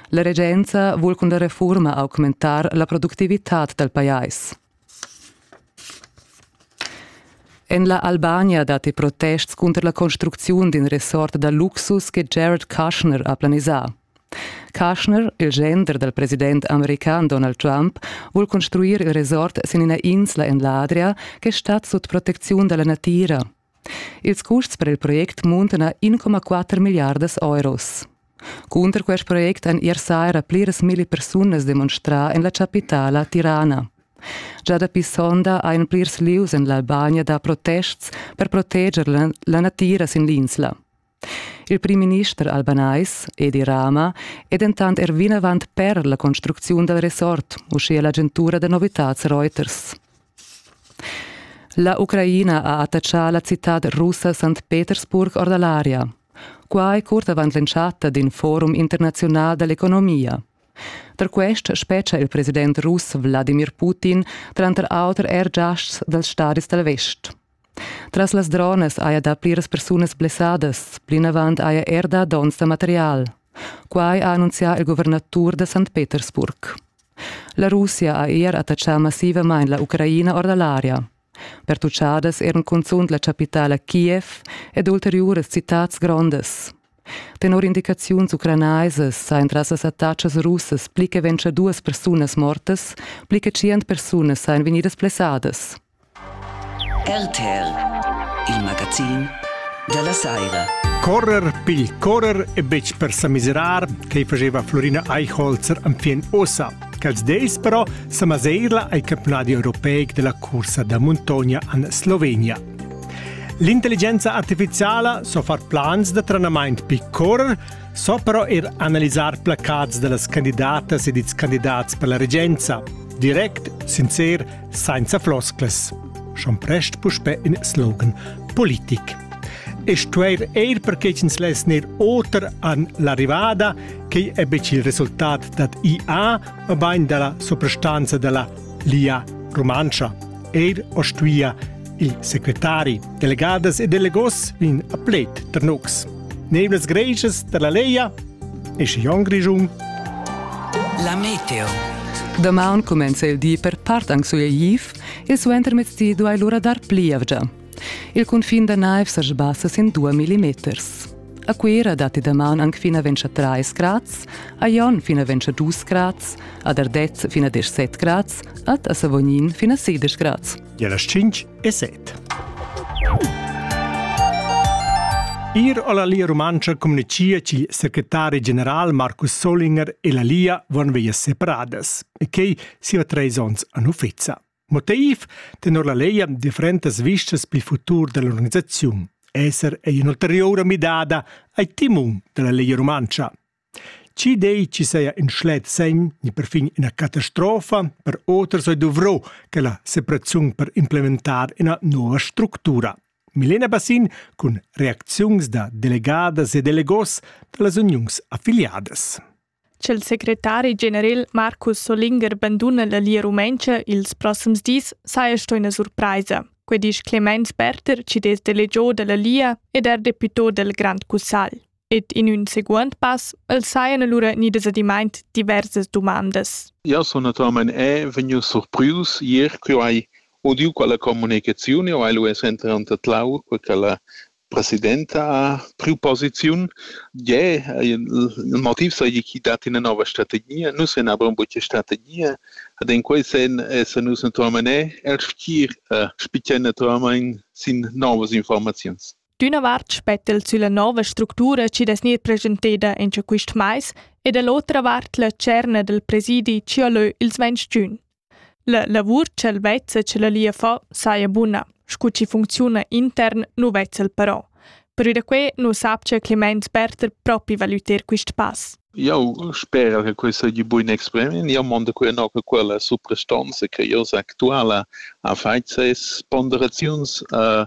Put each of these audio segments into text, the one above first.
La regenza vul cun la refurma augmentar la productivitad dal pajais. En la Albania datti protests cunter la construcziun d'in resort da luxus che Jared Kushner ha planisà. Kushner, il gender dal president american Donald Trump, vul construir il resort sin ina insla en l'Adria che stat sut protecziun da la natira. Ils custs per il project muntana 1,4 milliardas euros. Cunter quest project han ier saira pliras milli persunas demonstrà en la chapitala Tirana. Già dapi sonda hajan plirs lieus en l'Albania dà protests per proteger la natira sin l'insla. Il primminister albanais, Edi Rama, è dentant er vinavant per la construcziun dal resort, uschia l'agentura da novitads Reuters. La Ucraina ha attachà la citad russa St. Petersburg or da l'aria. Quai curt avant l'entschatta d'in forum internaziunal da l'economia. Da quest spetga il president russ Wladimir Putin tranter auter er giasts dals stadis dal vest. Tras las dronas haja dà pliras persunas blessadas, plinavant haja er dà donns da material. Quai ha annunzià il guvernatur da St. Petersburg. La Russia ha er attachà massivamain la Ucraina or da l'aria. Pertuchadas eran cunzunt la chapitala Kiev ed ulteriuras citads grondas. Tenor indicaziuns ucranaisas sajan tras las attachas russas pli che ventg duas persunas mortas, pli che tschient persunas sajan vegnidas blessadas. RTR, il magazin da la saira. Correr pigl correr e betg per sa miserar, che faceva Florina Eichholzer am fin ossa. Quels deis però sa maseirla ai campionadi europeic della cursa da montogna an Slovenia. L'intelligenza artificiala so far plans da trenament pi correr, so però er analisar placats da las candidatas ed ils candidats per la regenza. Direct, sincer Sainza flosclas. Schon prest puspè in slogan politic. E stueir eir perché ins less neir oter an l'arrivada, che èbec il resultat dat IA o bain della soprastanza della Lia Romancha. Eir o stuia Il secretari, delegadas e delegos vegn a pled tar nus. Nevlas greisas da la Leia e Skion Grischun. La meteo. Damaun comenza il di per part anche su Eif e suenter mezdi duai l'ora dar plievgia. Il confin da naiv sa sbassa sin 2 mm. A Cuera datti damaun anche fino a 23 grad, a Jon fino a 22 grad, ad Ardez fino a 17 grad, ad a Savognin fino a 16 grad. e las 5 e 7. Ir alla Lia Rumantscha communicia che il secretari general Markus Solinger e la Lia van via separadas e che siva treis ons an uffiza. Motiv tenor la lei differentas vistas pil futur dell'organizzazione. Esser è un'ulteriore midada ai timum della Lia Rumantscha. Chi dei chi saja ün schlet segn ni perfin üna catastrofa per oters ei dovrò quella separaziun per implementar üna nouva structura. Milena Bassin cun reacziuns da delegadas e delegos da las uniuns affiliadas. Ch'el secretari general Marcus Solinger banduna la Lia Rumentscha ils prossims dis saja sto üna surpraisa. Quei disch Clemens Berter, cides delegiò da la Lia ed er deputò del Grand Cussagl. ed in ün seguond pass els sajan alura gnidas adimaint diversas dumandas. Jau sun naturalmain è vegnius surprius ier ch'jeu hai udiu quella communicaziun, jau hai lu es enter anta Tlau, quella la presidenta ha priu posiziun. Gie, il motiv seigi chi dat ina nova strategia. Nus en abron buca strategia. Ad en quei sen essan nus naturalmein è el schir uh, spicchai naturalmein sin novas informaziuns. D'üna vart spetta el sülla nouva structura chi'd es gnir preschenteda incha quist mais e da l'otra vart la tscherna dal presidi chi ho lö ils ventg giun. La lavur cha'l vezza chi la lia fa saja buna, scu chi funcziuna intern nu vezza'l però. Perü da que nu sapcha Clemens Berther propi valüter quist pass. Jau spera che quai seigi buin exprimin. Jau mondo quei no che quella suprastanza che io actuala ha fait ses ponderaziuns uh,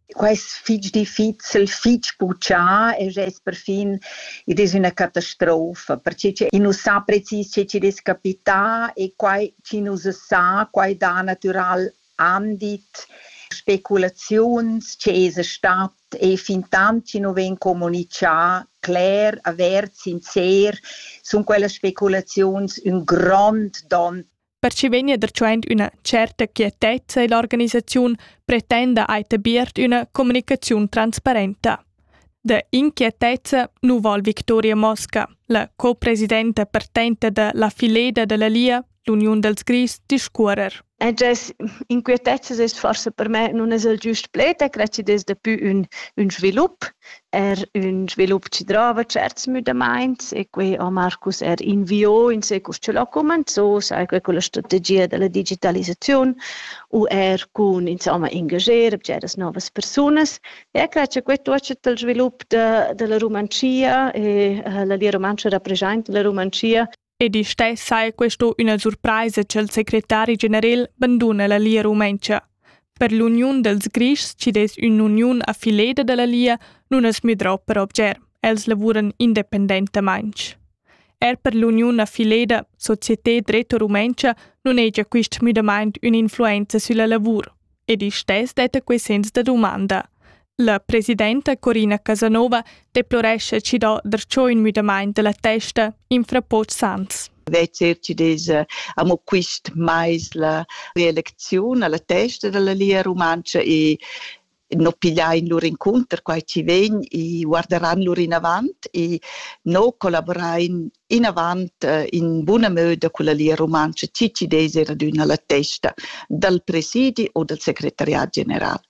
quai es fich difficil, fich puchà e gest perfin id es üna catastrofa, perche che i nu sa precis che chi'd es capità e quai chi nu se sa, quai dà natüral andit, speculaziuns che esa stat e fintant chi nu vegn comunichà cler, avert, sincer, sun quellas speculaziuns ün grond don perche vegna dertschend üna certa quietezza ill'organisaziun pretenda ai tabiert üna comunicaziun transparenta. De inquietezza nu vol Victoria Mosca, la copresidenta partenta de la fileda della Lia, l'Uniun dels Gris, discuorer. E des inquietezzas es forsa per me nun es il giust pled, e credi des daplü ün, ün svilup. er ün svilup chi drova tscherts müdamaints e quai ho Marcus er inviò in se cur ch'el ho cumanzò, sai que culla strategia da la digitalisaziun u er cun insomma ingager bgeras novas persunas. E cre cha que tuotscha dal svilup da da la Rumantschia e la Lia Rumantscha rapreschainta la Rumantschia Ed isch tai sai questo üna surpraisa cha'l secretari generel banduna la Lia Rumentscha. Per l'uniun dels Grischs chi dess ün'uniun a fileda da la Lia nun as müdrò per obger, els lavuran independentamaing. Er per l'uniun a fileda Société Dretto Rumentscha nun hegia quist müdamaint ün'influenza sülla lavur. Ed isch tess detta quai sens da dumanda. La presidenta Corina Casanova deplorescha chi do darcheu ün müdamaint da la testa infra Poch Sands. Vet CRCDs eh, amo quist mais la reelecziun alla testa dalla Lia Rumantscha e no pigliain lur incunter quai chi vegn e guarderan lur inavant e no collaborain inavant eh, in buna möda culla Lia Rumantscha chi ci des er adüna la testa dal presidi o dal secretariat general.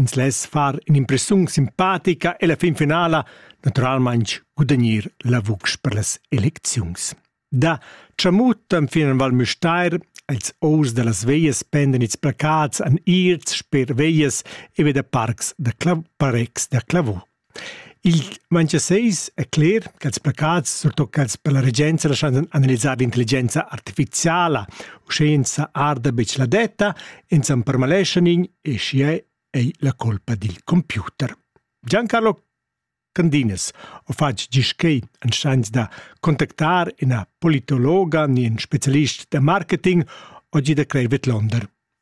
Ins less far in'impressiun simpatica e la finfinala naturalmain gudagnir la vucс per las elecziuns. Da Tschamut enfin en Val Müstair els ors da las veias pendan ils placats an ierts sper veias e ve da parcs da, clav, parcs da clavò. Il Manchia seis è cler cha'ls placats, surtot quels per la regenza laschan analisar l'intelligenza artifiziala, uschè insà arda be la detta, ins am permaleschan in e schier ei la colpa dil computer. Giancarlo Candinas ho fatg gist quei en schans da contactar ina politologa ni in specialist da marketing oggi da Crei vidlonder.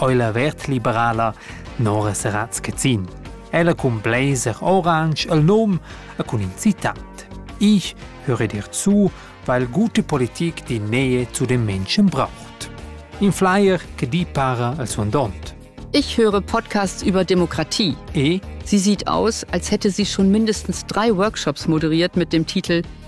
oi la vert liberala Nora Seratz Cezin. Ella cun blazer orange el nom e cun in citat. Ich höre dir zu, weil gute Politik die Nähe zu den Menschen braucht. In Flyer che di para al suandont. Ich höre Podcasts über Demokratie. E? Sie sieht aus, als hätte sie schon mindestens drei Workshops moderiert mit dem Titel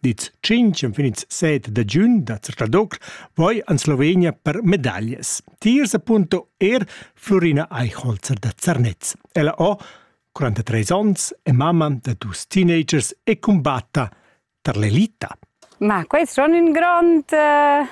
Dit tschintg infinits set da giun da Zrcadocl voi an Slovenia per medaglias. Tiers appunto er Florina Eichholzer da Zernez. Ella o 43 ons è mamma da dus teenagers e combatta tar l'elita. Ma quest è un grond uh,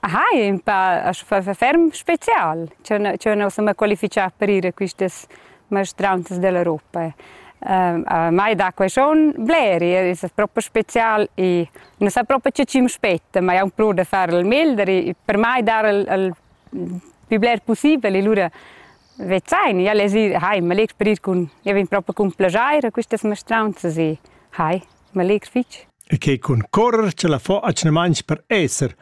Hai ün pa ferm special ch'eu nu sun mâ qualifichà per ir a quistas maestranzas dell'Europa. A mai dà quaishon bleri, es propi special e nu sa propi che chi'm spetta, ma aunc plü da far il meglder e per mai dar il pü bler pussibel e lura vezain. Ja lez ir, hai, m'allegr per ir cun, ja vegn propi cun plaschair a quistas maestranzas e hai, m'allegr fich. e che cun correr ce la fo atgnamaints per esser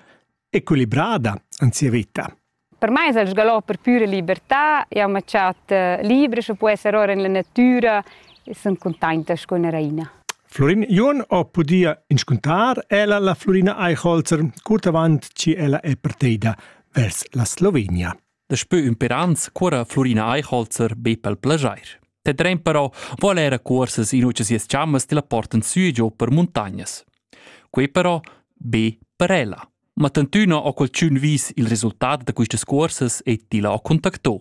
equilibrada in sia vita. Per mai es el sgalò per pura libertà, jau m'ha chat eh, libra, sche può esser ora in la natura e sun contenta con la raina. Florin Jon ho pudia inscuntar ella la Florina Eichholzer curt avant chi ella è parteida vers la Slovenia. Daspö ün per ans cuorra Flurina Eichholzer be pel plajair. Te dreim però voler a cuorsas in ucha sias chammas ti la portan sü e giò per muntagnas. Quei però be per ella. Ma tantüna ho qualchün vis il resultat da quistas cuorsas e ti la ha contactò.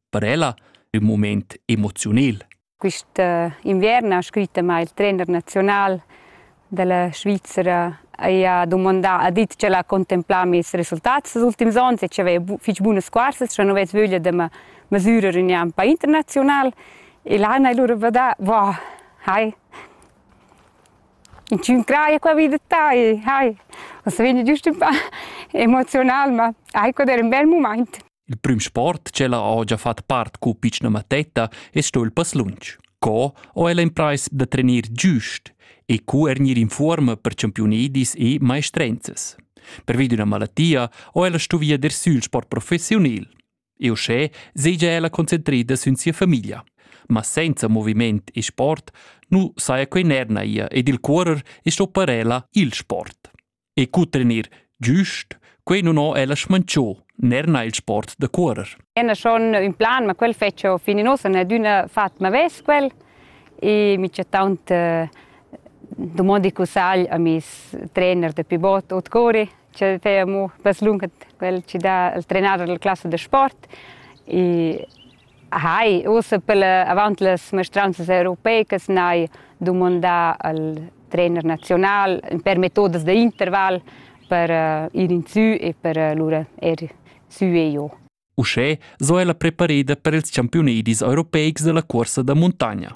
Per ella ün moment emoziunel. Quist inviern ha scrit amà il trender naziunal da la Svizra haja dumandà, ha dit ch'el ha contemplà mez resultats els ultims ons e ch'aveva fich bunas scuarsas, scha nu vess vöglia da ma masürer ün an pa internaziunal. E là han lura vadà, wow, hai, inchün craja qua vi da tai, hai. Ossa vegni giust ün pa emozional, ma hai quad eir ün bel mumaint. Il prüm sport ch'ella ho già fat part cu pitschna mattetta es sto il passlunch. Co ho ella imprais da trenir giust e cu er gnir in fuorma per champiunidis e maestrenzas. Pervi d'üna malattia ho ella stuvia der sül sport professiunil. E uschè segia ella concentrida sün sia famiglia. Ma senza moviment e sport nu saja quei ner naia ed il cuorer es sto per ella il sport. e cutrenir giust, quei non ho ella smancio, ner na il sport da curer. Ena schon un plan, ma quel fece fin in ossa, ne d'una fatma ves quel, e mi c'è tant eh, domandi cu sal a mis trainer de pivot ot cori, c'è te amo paslunga quel ci dà il trenader della classe de sport e Hai, ussa pella, avant las maestranzas europeicas n'hai dumandà al trainer naziunal per metodas da interval per uh, ir in sü e per uh, lura er sü e giò. Uschè so ella prepareda per ils campiunedis europeics della cuorsa da muntagna.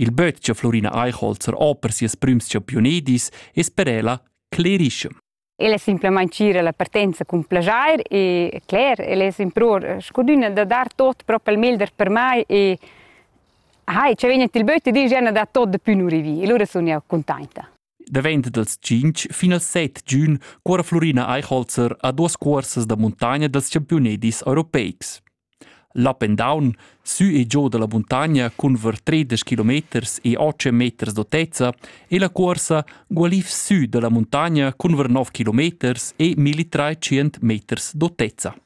Il böt cha Florina Eichholzer ho per sieus prüms champiunedis es per ella clerischem. El è simplamain cira la partenza cun plaschair e cler, el es impruor scudüna da dar tot propi il meglder per mai e hai, ci vegn il böt e disch, ja da tot da pü nu rivi. E lura sun jau cuntainta. Davent dals tschinch fin als set giun cuora Flurina Eichholzer a duas cuorsas da muntagna dals campiunedis europeics. L'up and down sü e giò da la muntagna cun ver tredesch kilometers e otg meters d'autezza e la cuorsa gualiv sü da la muntagna cun ver nov kilometers e milli trais tschient meters d'autezza.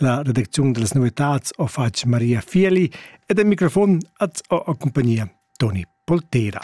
La redacziun da las novitads ho fatg Maria Fieli ed en microfon at ho accumpagnia Toni Poltera.